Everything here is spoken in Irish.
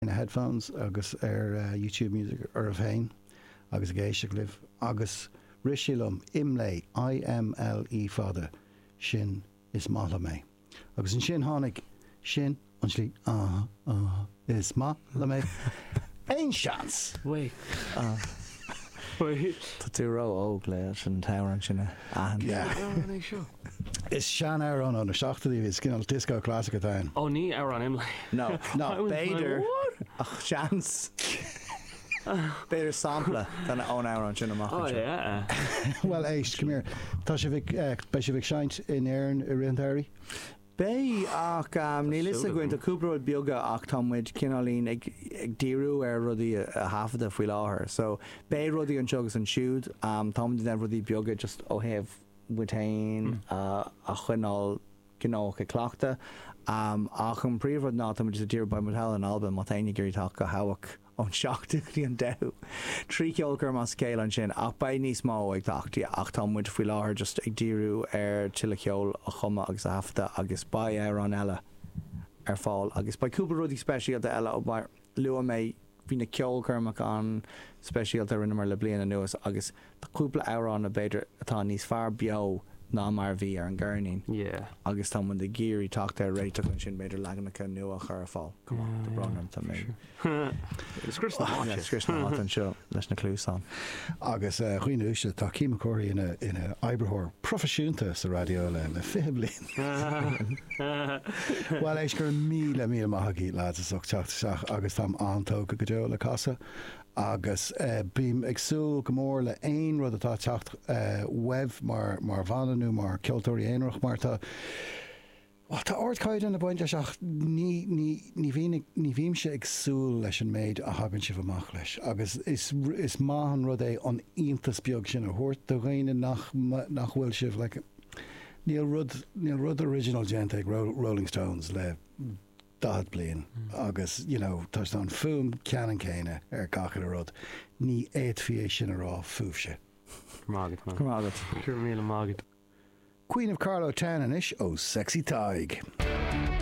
na headphones agus ar YouTube Music oraibh féin agus ag éisteacht libh agus rith sé liom, Imlé, I-M-L-E fada, sin 'is maith liom é'. Agus ansin tháinig, sin an slí Is maith liom é. Aon seans? Tá tú ró óg le sin an t-amhrán sin a. An amhrán é seo? Is sean-amhrán ó na seachtóidí é, is cineál disco classic atá ann. Oh, ní amhrán Imlé. No, no, b'fhéidir, ach seans, b'fhéidir sampla ón amhrán sin amach anseo. Oh yeah. Bhuel éist, come here, tá sibh ag, beidh sibh ag seinnt in Éirinn i rith an tsamhraidh? Beidh, ach níl a fhios againn. Tá cúpla rud beaga ach tá muid cineáilín ag díriú ar rudaí a thaifeadadh faoi láthair. So, beidh rudaí anseo agus ansiúd. Táimid ag déanamh rudaí beaga just ó thaobh muid féin a choinneáil gnóthach ag cleachtadh. Ach an príomhrud ná tá muid just ag díriú, beidh muid thall in Albain, má tá éinne ag iarraidh teacht go hEabhach, ón seachtú go dtí an deichiú. Trí cheolchoirm, an scéal ansin, ach beidh níos mó ag teacht, ach tá muid faoi láthair just ag díriú ar tuilleadh ceoil a chumadh agus a thaifeadadh agus beidh amhráin eile ar fáil agus beidh cúpla rudaí speisialta eile mar a luaigh mé, bhí na ceolchoirmeacha an-speisialta a rinneamar le bliain anuas agus Tá cúpla amhrán b'fhéidir atá níos fearr beo ná mar a bhí ar an gceirnín agus tá muid ag iarraidh teacht ar réiteach ansin, b'fhéidir leaganacha nua a chur ar fáil. Tá brón orm, tá mé ag scrios na háite anseo leis na cluasáin. Agus a dhaoine uaisle, tá Keith McCoury ina oibritheoir proifisiúnta sa raidió le fiche bliain. Bhuel, éist, go raibh míle míle maith agaibh, lads, as ucht teacht isteach agus táim an-tógtha go deo le cás a agus bím ag súil go mór le aon rud atá ag teacht uaibh mar bhanna nó mar ceoltóirí aonarach mar tá, bhuel tá ardchaighdeán ag baint leis ach ní ní ní bhíonn ag ní bhímse ag súil leis an méid a thagann sibh amach leis agus is is maith an rud é an iontas beag sin a thabhairt do dhaoine nach nach bhfuil sibh like níl rud níl rud original déanta ag Rolling Stones le 40 bliain agus you know tá an fuaim ceannann céanna ar 'chaon rud, ní fhéadfaí é sin a rá fúibhse. Go raibh maith agat, man. Go raibh maith agat. Go raibh míle maith agat. Queen of Carlow Town anois ó Sexy Tadhg.